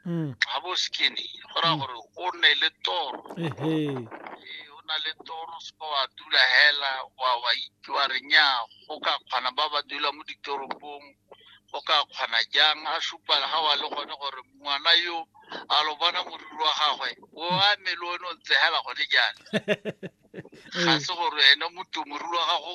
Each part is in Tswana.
mm. ga bo skinny go raya mm. gore o nne le toro o na le toro seka wa dula hela wa wa itwa re nya go ka kgona ba ba dula mo ditoropong go ka kgona jang a supala ga wa le gone gore ngwana yo a lo bona moriri wa gagwe o a mele o ne o ntse hela gone jana ga se gore ene motu moriri wa gago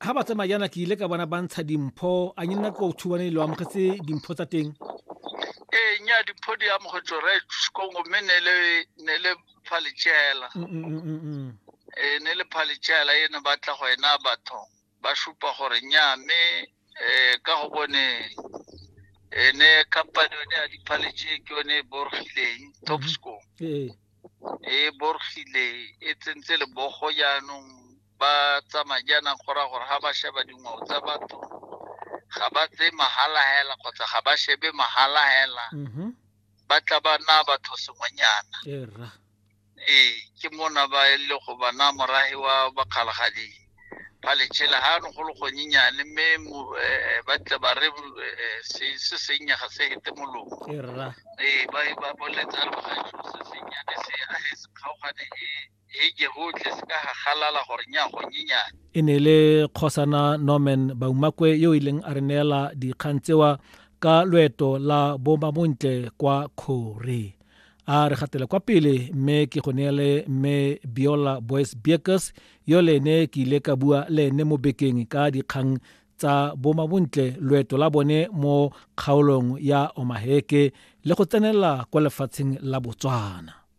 Ha ba tsamaya jaana ke ile ka bona ba ntsha dimpho a nye nna ko thubane lo amogetse dimpho tsa teng ee nya dimpho di amogetswe re kongo mme ne le ne le phaletsela Mm, mm, mm, mm, mm. e ne le phaletsela e ne ba tla go ena batho ba supa gore nya mme eh, ka go bone e ne company yone ya diphaletse ke yone e borogileng topsco ee e borogile e tsentse lebogo jaanong ba tsa madi a nang go raya gore ga ba sheba dingwao tsa batho ga ba tse mahala hela kgotsa ga ba shebe mahala hela mm-hmm. ba tla ba na batho sengwenyana ee ke mona ba e le go bana morahi wa bakgalagadi ba letšhela ga no go le gonyenyane mme eh, ba tle ba re eh, se sennye ga se hete molomo ee ba e, boletsa re bagajo se sennyane se a se kgaogane e heke hotlhe se ka ga galala gore nya go nyenyane e ne e le kgosana norman baumakwe yo e leng a re neela dikgang tsewa ka loeto la bomamontle kwa kgore a re gatele kwa pele mme ke go neele mme biola boys biekes yo le ene ke ile ka bua le ene mo bekeng ka dikgang tsa bomabontle loeto la bone mo kgaolong ya omaheke le go tsenela kwa lefatsheng la botswana